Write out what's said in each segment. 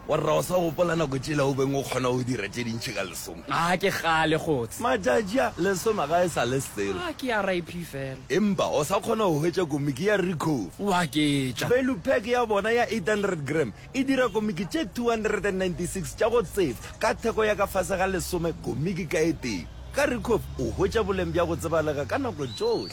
Warra o sa gopola nako tšela o beng o kgona go dira tše dintši ka lesome? A ke kgale kgotse. Matšatši a, lesome ga e sa le selo. A ke RIP fela. Empa o sa kgona go hwetša komiki ya Ricoh? Wa ke tša. Value pack ya bona ya 800 gram e dira komiki tše 296 tša go tseba ka theko ya ka fase ga lesome komiki ka e tee. Ka Ricoh o hwetša boleng bja go tsebalega ka nako tšohle.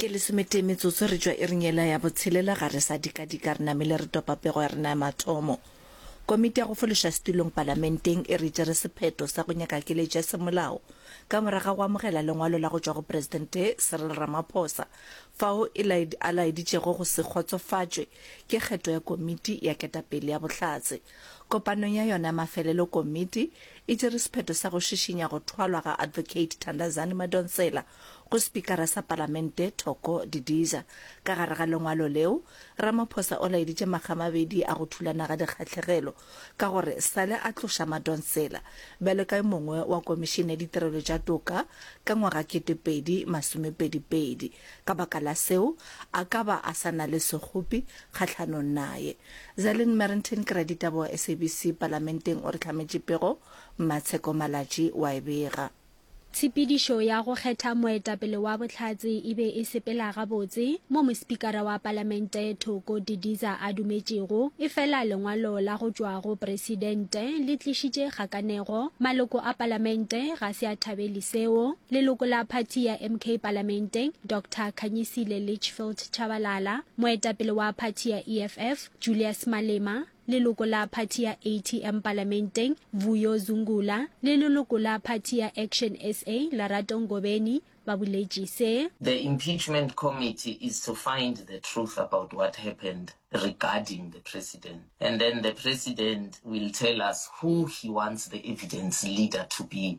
ke lesometee metsotso re tšwa iring yela ya botshelela ga re sa dikadika re namile re topa pego ya rena ya mathomo komiti ya go fološa setulong palamenteng e re tšere sephetho sa go nyaka keletšo ya semolao ka moraga go amogela lengwalo la go tšwa go presidente cyril ramaphosa fao e a laeditšego go se kgotsofatšwe ke kgetho ya komiti ya ketapele ya bohlatse kopanong ya yona mafelelo komiti e tšere sephetho sa go šišinya go thwalwa ga Advocate Thandazani Madonsela go Spikara sa Palamente Thoko Didiza. Ka gare ga lengwalo leo, Ramaphosa o laeditše makgamabedi a go thulana ga dikgahlegelo ka gore sale a tloša Madonsela bjalo ka yo mongwe wa Komišene ya Ditirelo tša Toka ka ngwaga kete pedi masomepedi pedi. Ka baka la seo, a ka ba a sa na le sekgopi kgahlanong naye. Zellen Merrington, keraditaba wa SABC Palamenteng o re hlametše pego, Mmatsheko Malatji wa e bega. Tshepedišo ya go kgetha moetapele wa Bohlatse e be e sepela gabotse mo mospikara wa Palamente Thoko Didiza a dumetšego, efela lengwalo la go tšwa go Presidente le tlišitše kgakanego. Maloko a Palamente ga se a thabeli seo. Leloko la phathi ya MK palamenteng, Doctor Khanyisile Litchfield Tshabalala, moetapele wa phathi ya EFF, Julius Malema, leloko la phathi ya ATM palamenteng, Vuyo Zungula, le leloko la phathi ya Action sa, Lerato Ngobeni, ba boletše se. The impeachment committee is to find the truth about what happened regarding the president and then the president will tell us who he wants the evidence leader to be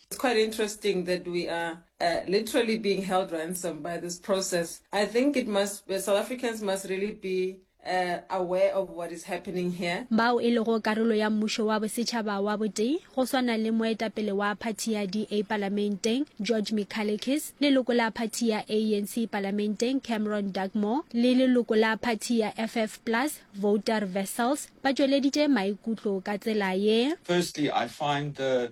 It's quite interesting that we are uh, literally being held ransom by this process. I think it must, uh, South Africans must really be uh, aware of what is happening here. bao e lego karolo ya mmušo wa bosetšhaba wa botee go swana le moetapele wa phathi ya da palamenteng george michalekis leloko la phathi ya anc palamenteng cameron dugmore le leloko la phathi ya ff plus voter vessels ba tšweleditše maikutlo ka tsela ye Firstly, I find the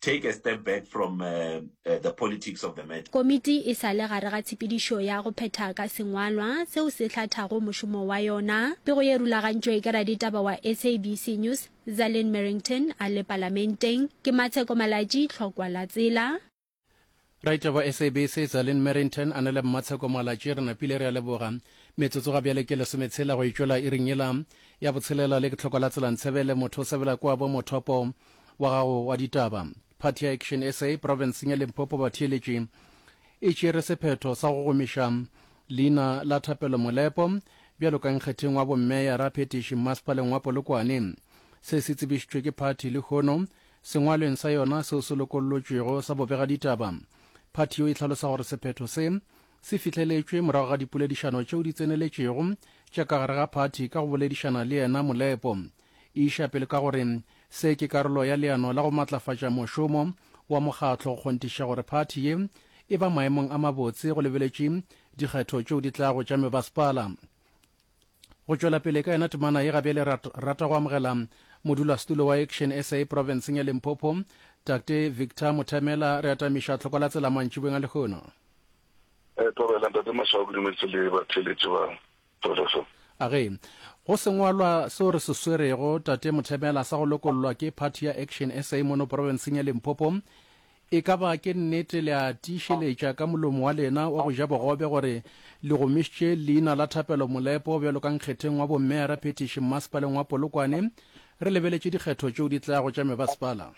Take a step back from the politics of the matter. Komiti e sa le gare ga tshepedišo ya go phetha ka sengwalwa seo se hlathago mošomo wa yona. Pego ye rulagantšwe ke raditaba wa SABC News, Zalin Merrington a le Palamenteng. Ke Matsheko Malatji, Tlhokwa la Tsela. Raitla wa SABC Zalin Merrington a na le Mmatsheko Moalatše re napile re a leboga. Metsotso ga bjale ke lesometshela go e tšwela iring yela ya botshelela le ke tlhoko la tsela Ntshebele motho o sebela kwa bo mothopo wa gago wa ditaba. Party ya Action sa profenseng ya Limpopo batheeletši e tšere sephetho sa go gomiša leina la Thapelo Molepo bjalo ka nkgetheng wa bommeyara phetiši mmasepaleng wa Polokwane. Se se tsebišitšwe ke party lehono Sengwalweng sa yona seo se lokollotšwego sa bobegaditaba, phathi yo e hlalosa gore sephetho se se fihleletšwe morago ga dipoledišano tšeo di tseneletšego tša ka gare ga phathi ka go boledišana le yena Molepo. E iša pele ka gore se ke karolo ya leano la go matlafatša mošomo wa mokgatlo go kgonthiša gore phathi ye e ba maemong a mabotse go lebeletše dikgetho tšeo di tlago tša mebasepala. go tšwela pele ka yona temana ye gabjale ra rata go amogela modulasetulo wa action sa provinceng ya limpopo takte victor mothemela re atamiša tlhoko la tsela mantšibeng a lehono eh, tobela ntate maswao ke dumeditse le batheletši ba tolefo a ge go sengwalwa seo re se swerego tate mothemela sa go lokollwa ke party ya action sa mono provinceng ya limpopo E ka ba ke nnete le a tiišeletša ka molomo wa lena wa go ja bogobe gore le gomišitše leina la Thapelo Molepo bjalo ka nkgetheng wa bommeara phetiši mmasepaleng wa Polokwane. Re lebeletše dikgetho tšeo di tlago tša mebasepala.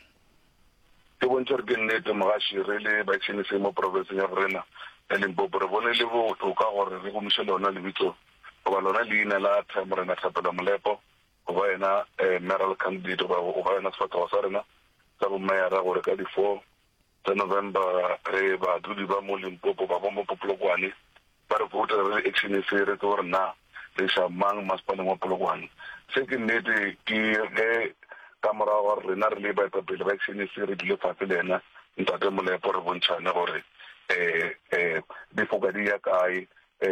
Ke bontšha gore ke nnete mogaši re le baitšhinisei mo profenseng ya borena ya Limpopo re bone e le botoka gore re gomiše lona lebitso goba lona leina la Morena Thapelo Molepo. go ba yena Mayoral Candidate goba go ba yona sefathogo sa rena sa bo Mayara gore ka di four tsa November re badudi ba mo Limpopo ba bombo po Polokwane ba re vote re le action e fe re tse gore na re iša mang masepaleng wa Polokwane. Se ke nnete ke ge ka morago ga gore rena re le baetapele ba action e fe re dule fatshe le yena Ntate Molepo re bontšhane gore di foka di ya kae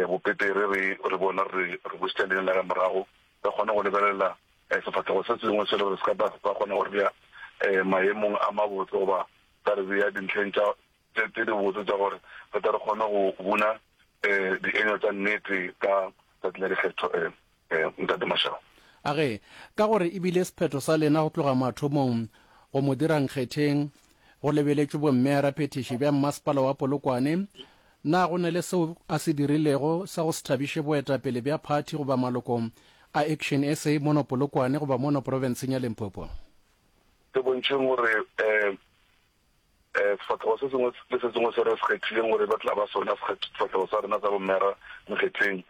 bo Petere re re bona re re busitse leina la ge morago. Re kgona go lebelela sefahlego se sengwe se le gore se ka ba sa kgona go re bea maemong a mabotse goba sa re bea dintlheng tše dibotse tša gore re tle re kgone go buna dienywa tša nnete ka Tšatši la Dikgetho, Ntate Mashaba. A re, Ka gore e bile sephetho sa lena go tloga mathomong go mo dira nkgetheng, go lebeletšwe bommea raphethiši bja Mmasepala wa Polokwane, Na go na le seo a se dirilego sa go se thabiše boetapele bja phathi goba maloko a Action sa mono Polokwane goba mono profenseng ya Limpopo? Se bontšheng gore sefahlego se sengwe le se sengwe se re se kgethileng gore e be tla ba sona sefahlego sa rena sa bomera mokgetheng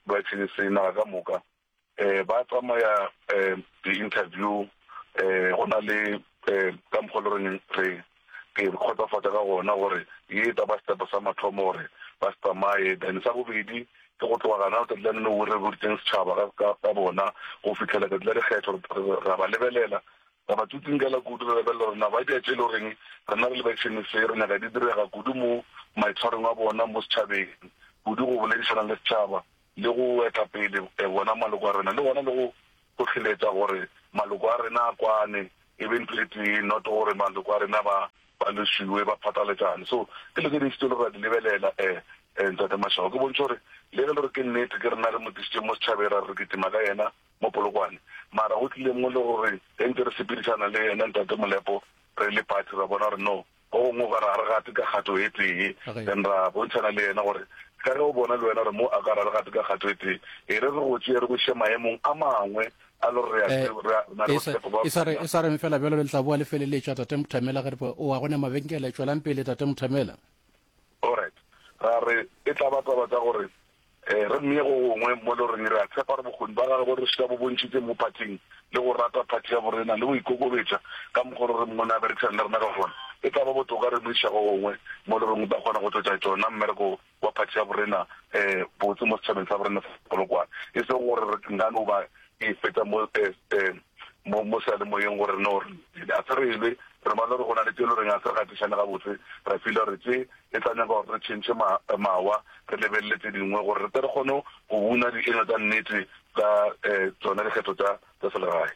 ba Action sa naga ka moka. um ba tsamaya um di-interview um go na le um ka mokgwa le reng re ke kgotsafatša ka gona gore ye e taba setepo sa mathomo gore ba se tsamaye then sa bobedi ke go tloga gana letsatsi la nene o re boditseng setšhaba ka bona go fitlhela tsatsi la dikgetho ra ba lebelela ra ba tsutsinkela kudu re lebelela gore na ba dia tše le goreng rena re lebešene se re nyaka di direga kudu mo maitshwarong a bona mo setšhabeng kudu go boledišana le setšhaba le go eta pele wona maloko a rena, le gona le go hlohleletša gore maloko a rena a kwane e be ntho e tee, not gore maloko a rena ba ba lesiwe ba phataletšane. So ke dilo tše dintši tše e le gore ra di lebelela um um Ntate Mashau, ke bontšhe gore le ge e le gore ke nnete ke rena re mo tlišitše mo setšhabeng ra re re kitima ka yena mo Polokwane, mara go tlile mo le gore ge ntse re sepedišana le yena Ntate Molepo re le party ra bona gore no Gongwe o ka re ga re gate ka kgato e tee, then ra bontšhana le yena gore ka ge o bona le wena gore mo a ka re ga re gate ka kgato e tee, e re re go tšee re go iše maemong a mangwe a le gore re a na le botshepo ba gore. E sa reng fela bjalo, le tla boa le feleletša, Tate Mothamela. Ge re re, O a gona mabenkele? Tšwelang pele, Tate Mothamela. Alright, ra re e tla ba taba tša gore Ee, re mmee go gongwe mo loreng. Re a tshepa gore bokgoni ba gagwe bo re šita bo bontšhitše mo phathing le go rata phathi ya borena le go ikokobetša ka mokgwa loreng mone a berekisana le rena ka gona. E tla ba botoka re mo iša go gongwe mo loreng o tla kgona go tšwetša tšona mmereko wa phathi ya borena botse mo setšhabeng sa borena sa Polokwane, e sego gore re nka no ba E feta mo, eh, eh, mo, mo sealemoyeng gore no re, a se re elwe, re bala gore go na le tše e le goreng a se re gatišane gabotse, ra fila gore tše e tla nyaka gore re tšhentšhe ma, mawa, re lebelele tše dingwe gore re tle re kgone go buna dienywa tša nnete tša, eh, tšona dikgetho tša, tša selegae.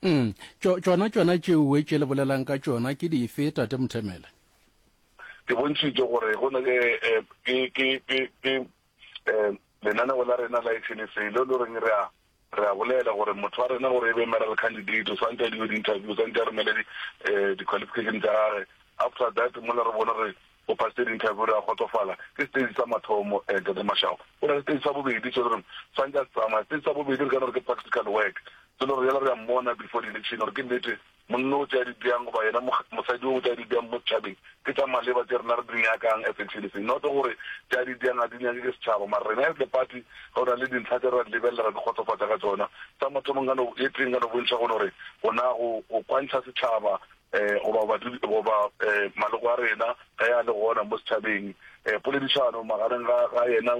Um, tšo, tšona, tšona tšeoe tše le bolelang ka tšona ke dife, Tate Mthemele? Ke bontšhitše gore go na le, eh, ke, ke, ke, ke, um lenaneo la rena la SNSA leo lo reng re a re a bolela gore motho wa rena gore e be maral candidate o swantse a diwe di-interview o swantse a romele um di-qualification eh, tsa gage after that mola re bone gore o pasitse di-interview re a kgotsofala ke stage sa mathomo um eh, tate mashago o na le stage sa bobedi so gore swantse a tsamaya stage sa bobedi re ka no re ke practical work so le gore yala re a mmona before di-election gore ke nnete Monna o tšea di bjang goba yena mosadi yo o tšea di bjang mo setšhabeng ke tša maleba tše rena re di nyakang as Excelsis. Not gore tša di bjang ga di nyake ke setšhaba mara rena as the party go na le dintlha tše re a di lebelela ra di kgotsofatša ga tšona. Sa mathomo nka no ye tee nka no bontšha go no re go na go go kwantšha setšhaba goba badudi goba maloko a rena ge a le gona mo setšhabeng poledišano magareng ga ga yena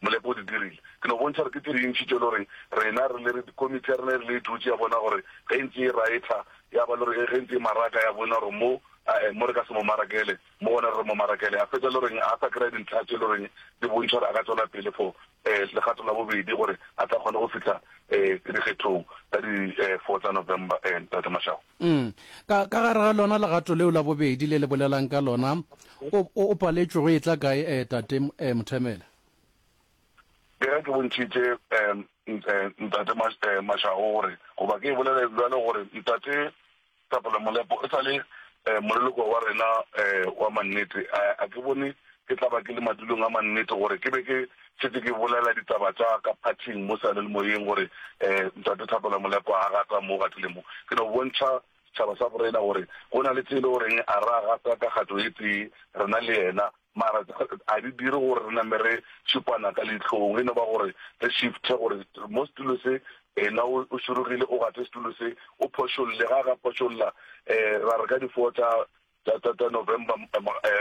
Molepo o di dirile. Ke no bontšha gore ke tše dintši tše e le gore rena re le re komiti ya rena e rile e dutše ya bona gore ge e ntše e raetha ya ba le gore ge e ntše e maraka ya bona gore mo a e mo re ka se mo marakele mo gona re re mo marakele a fetša e le goreng a sa kry-a dintlha tše e le goreng di bontšha gore a ka tšwela pele for um legato la bobedi gore a tla kgone go fihla um dikgethong tsa di um four tsa November um Ntate Mashaba. Umm. Ka, ka gare ga lona legato leo la bobedi le le bolelang ka lona, o, o, o paletšwe go etla kae, eh, Tate eh, Mothemela? Ke ge ke bontšhitše, eh, nt, eh, Ntate Mash, eh, Mashago gore, goba ke e bolele bjalo gore, Ntate Tapela Molepo, e sa le, eh, moleloko wa rena, eh, wa mannete, a, a ke bone ke tla ba ke le madulong a mannete gore ke be ke, Šetše ke bolela ditaba tša ka phathing mo sealelmoyeng gore Ntate Thapelo Molekwa a gata mo o gatile mo. Ke no bontšha setšhaba sa borena gore go na le tše e le goreng a ra gata ka kgato e tee rena le yena mara a di dire gore re name re šupana ka leihlong. E no ba gore re shifthe gore mo setulo se ena o šurugile o gate setulo se o phošolle. Ga a ka phošolla ra re ka difoo tša Tsa, tsa, tsa November,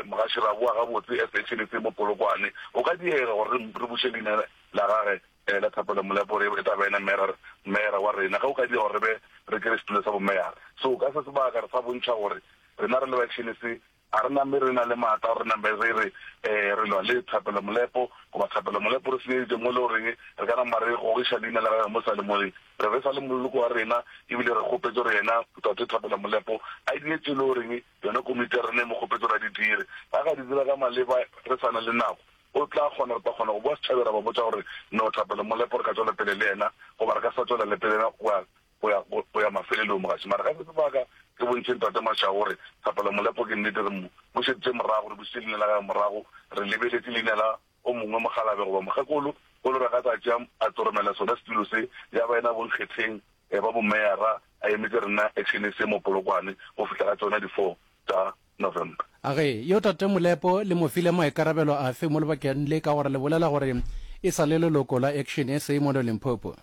Mgashiraboa, gabotse as a tšhene tse mo Polokwane, go ka diega gore re, re buše leina la gage la thapelo Molepo gore e tla ba yena Merer, Meyara wa rena, ge go ka direga gore re be re kere setulo sa Bomeyara. So ka se sebaka re sa bontšha gore rena re le ba tšhene se, ga re nambe re na le maatla gore re nambe re re, ee, re lwa le thapelo Molepo, goba thapelo Molepo re senyeditše mo e le goreng re ka nama re gogiša leina la gage mo sa le mo le, Re besa le moloko wa rena e bile re kgopetše gore yena Tate Thabela Molepo a e dire tše e lego gore yona komiti ya rena e mo kgopetše gore a di dire. Ge a ka di dira ka maleba re sa na le nako, o tla kgona, re tla kgona go boa setšhabeng ra ba botša gore no Thapelo Molepo re ka tšwela pele le yena goba re ka se sa tšwela le pele le yena go ya, go ya, go ya mafelelong. Mogatši, mara ge se sebaka re bontšheng Tate Mashau gore Thapelo Molepo ke nnete re mo bušeditše morago, re bušitše leina la gagwe morago, re lebeletše leina la. o mongwe mokgalabje goba mokgekolo o lora ka tlase a a tlo romela sona setulo se, ya ba yena bonkgetheng ba bomeyara a emetše rena Action SA mo Polokwane go fihla ka tsona di four tša November. A re, Yo Tate Molepo le mo file maikarabelo afe mo lebakeng le ka gore le bolela gore e sa le leloko la Action SA mono Limpopo?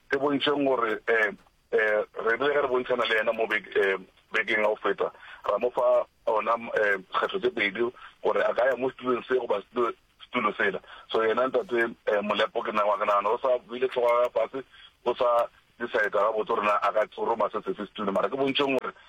Ke bontšheng gore Re rile ge re bontšhana le yena mo bekeng ya go feta, ra mo fa ona kgetho tše pedi gore a ka ya mo setulong se goba setulo sela. So yena Ntate Molepo ke nagana nagana o sa beile hlogo ya gagwe fase, o sa decide-a gabotse gore na a ka tsoroma se sefe setulo. Mara ke bontšheng gore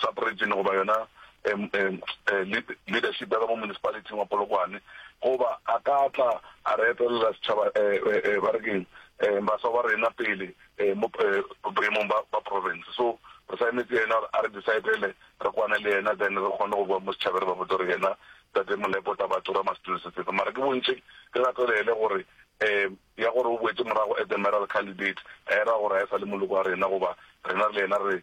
Sub-region goba yona leadership ya ka mo municipality-ing wa Polokwane, goba a ka tla a re etelela setšhaba ba re keng baswa ba rena pele mo boemong ba province. So re sa emetse yena gore a re decide-ele, re kwane le yena then re kgone go bowa mo setšhabeng re ba botse gore yena Tate Molepo o tla ba tura must do se se fe. Mara ke bontšhe ke gatelele gore ya gore o boetse morago as a mayoral candidate ga e ra gore ga e sa le moloko wa rena goba rena re le yena re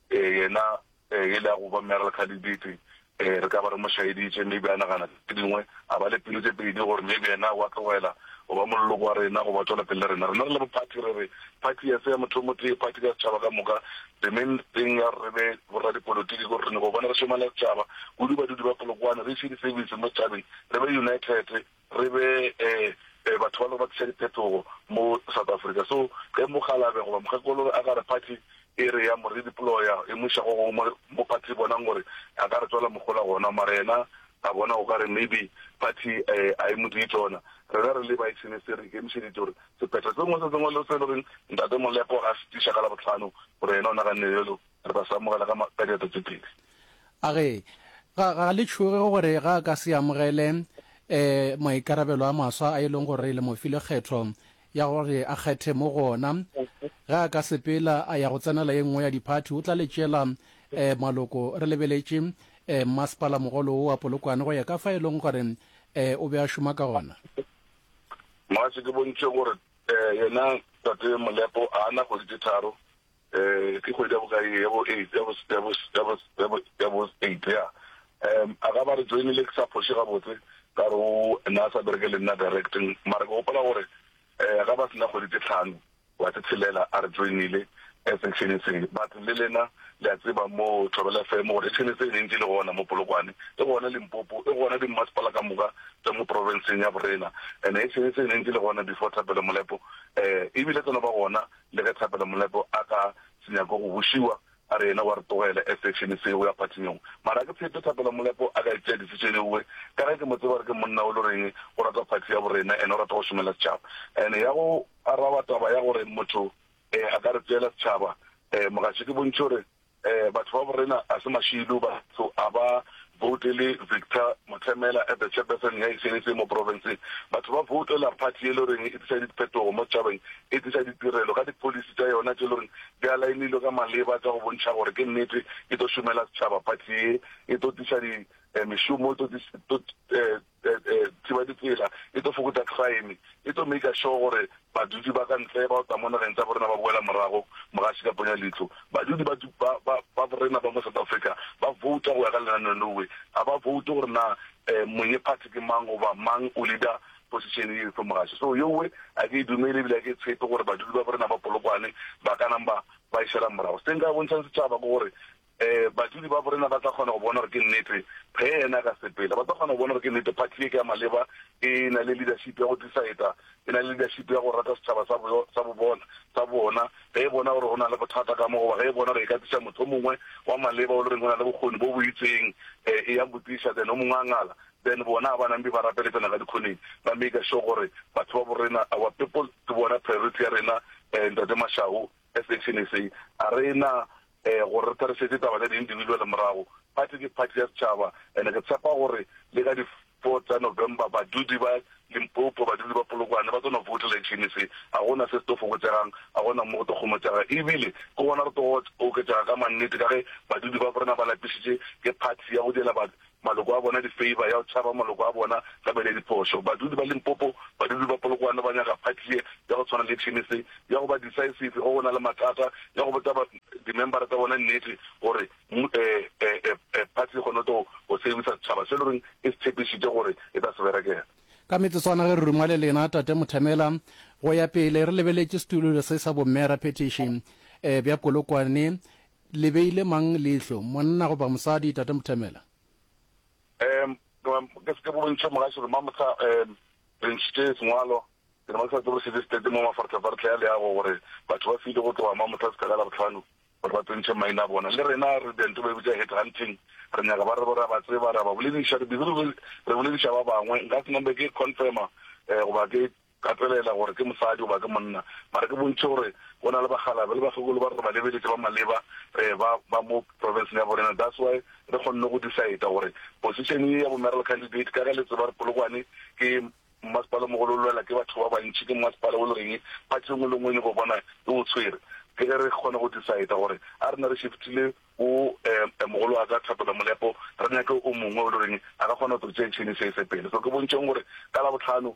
Yena e le ya go ba Mayoral Candidate, re ka ba re mo šaeditše, maybe a nagana tše dingwe, a ba le pelo tše pedi gore maybe yena wa tlogela go ba moleloko wa rena goba tšwela pele le rena. Rena re le bo party re re party ga se ya motho o motee, party ke ya setšhaba ka moka. The main thing ya gore re be borradipolotiki ke gore re nyaka go bona re šomela setšhaba, kudu badudi ba Polokwane, re ise di-service mo setšhabeng, re be united. Re be batho ba lego ba tliša diphetogo mo South Africa. So ge mokgalabje goba mokgekolore a ka re party e re ya mo redeploya e mo iša go gongwe mo party e bonang gore a ka re tswela mohola gona. Mara yena a bona o ka re maybe party a e mo die tsona. Rena re le ba Excellency re ikemišeditše gore sephetho se sengwe se sengwe le se e le goreng Ntate Molepo a se tliša ka Labohlano gore yena o naganne bjalo, Re tla se amogela ka, ka diatla tše pedi. A re, Ga, ga le tšhoge gore ga a ka se amogele um maikarabelo a maswa a e leng gore le mo file kgetho ya gore a kgethe mo go ona. Ge a ka sepela a ya go tsenela ye nngwe ya diphathi, o tla le tšela um maloko. Re lebeletše um mmasepala mogolo wo wa Polokwane go ya ka fa e leng gore um o be a šoma ka gona. Mogatše, ke bontšhe gore um yena Tate Molepo a na kgwedi tše tharo. um ke kgwedi ya bokae ye, ya bo eight, ya bo, ya bo, ya bo, ya bo, ya bo eight, ya. Um a ka ba re joinile ke sa phoše gabotse, ka re o ne a sa bereke le nna direct, mara ke gopola gore um a ka ba se na kgwedi tše tlhano goba tše tshelela a re joinile section-eng se. But le lena le a tseba mo Thobela FM gore section se e ne e ntše e le gona mo Polokwane, e gona Limpopo, e gona dimmasepala ka moka tša mo province-eng ya bo rena. And-e section se e ne e ntše e le gona before Thapelo Molepo, um ebile tse no ba gona Le ge Thapelo Molepo a ka se nyake go bušiwa, a re yena wa re tlogela a section se o ya phathinyong, mara a ke tshepe Thapelo Molepo a ka e tšea decision e uwe, ka ge ke mo tseba gore ke monna o lo reng o rata phathi ya borena and o rata go šomela setšhaba. And ya go araba taba ya gore motho a ka re tseela setšhaba, mogatše ke bontšhe gore Batho ba borena a se mašiidu, batho a ba voutele Victor Mothemela as the chairperson ya e senetseng mo profenseng, batho ba voutela party e le goreng e tlisa diphetogo mo tšhabeng, e tlisa ditirelo ka di policy tša yona tše e le goreng di alaenilwe ka maleba tša go bontšha gore ke nnete e tlo šomela setšhaba party ye, e tlo tlisa di mešomo, e tlo Thibaditsela e tlo fokotša crime, e tlo maker sure gore badudi ba ka ntle ba go tla mo nageng tša borena ba boela morago mogaši ka ponya leihlo. Badudi ba ba ba ba borena ba mo South Africa ba vouta go ya ka lenaneo leowe, ga ba voute gore na monye party ke mang goba mang o leader position ye efe mogaši. So yowe a ke e dumele ebile a ke e tshepe gore badudi ba borena ba Polokwane ba ka nang ba ba e šela morago. Se nka bontšhang setšhaba ke gore Ee, badudi ba borena ba tla kgona go bona gore ke nnete, ge Yena a ka sepela. Ba tla kgona go bona gore ke nnete, phathi ye ke ya maleba, e na le leadership ya go decider, e na le leadership ya go rata setšhaba sa bo, sa bo bona, sa bona, ge e bona gore go na le bothata ka mo, goba ge e bona gore e ka tliša motho o mongwe wa maleba o le reng o na le bokgoni bo bo itseng, e, e ya mo tliša, then o mongwe a ngala. Then bona ga ba na mpe ba rapele tsena ka dikhoneng, ba maker sure gore batho ba borena, our people, ke bona priority ya rena, e, Ntate Mashau. Section se, a re na gore re therešetše taba tša di-individual morago, party ke party ya setšhaba and ke tshepa gore le ka di four tša November badudi ba Limpopo, badudi ba Polokwane ba tlo no voutela section se, ga go na se se tlo fokotšegang, ga go na mo go tlo kgomotšega e bile ke gona re tlo oketšega ka mannete ka ge badudi ba rena ba lapišitše ke party ya go diela Maloko a bona di-favour ya go tšhaba maloko a bona ka bene diphošo. Badudi ba Limpopo, badudi ba Polokwane ba nyaka party ye ya go tshwana le Chinese ya go ba decisive ge go na le matata, ya go botša ba di-member-a tsa bona nnete gore party e kgone go tlo go servisa setšhaba se e le goreng e se tshepišitše gore e tla se berekela. Ka metsotswana ge re ruma le lena Tate Muthamela go ya pele re lebeletše setulo se sa bo Mme Raphetiši bja Polokwane Le beile mang leihlo, monna goba mosadi, Tate Muthemela? Em, em, ke se ke bontšhe mogašo re mamohla em, re ntšhitše sengwalo, ke re ba sa tsebo sebe state mo mafartlhafartlha ya leago gore batho ba file go tloga mamohla seka ka labohlano gore ba tsentšhe maina a bona. Le rena re dento ba e bitša head hunting, re nyaka ba re bo re a ba tseba, re a ba bolediša, re busy re re bolediša ba bangwe. Nka se nombe ke confirma eh, goba ke gatelela gore ke mosadi goba ke monna, mara ke bontšhe gore go na le bakgalabje le bakgekolo ba re ba lebeletše ba maleba ba ba mo provinceng ya borena, that's why re kgonne go decide gore position ye ya bo mayoral candidate ka ge le tseba gore Polokwane ke mmasepala o mogolo o lwela ke batho ba bantši, ke mmasepala o le reng party engwe le engwe e nyoko bona e o tshwere, ke ge re kgona go decide gore a re na re shiftile go um mogolo wa ka Thapelo Molepo re nyake o mongwe o le reng a ka kgona go tlo tšea chain se ise pele, so ke bontšheng gore ka Labohlano.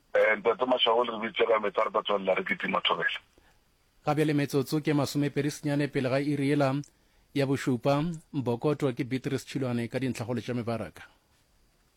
Ee, Ntate Mashau, le re biditše ka meetse, re tla tswelela re kitima thobela. Ga bjale metsotso ke masomepedi senyane pele ga iri yela ya bošupa. Bokoto ke Beatrice Tšhilwane ka dintlhakgolo tša mebaraka.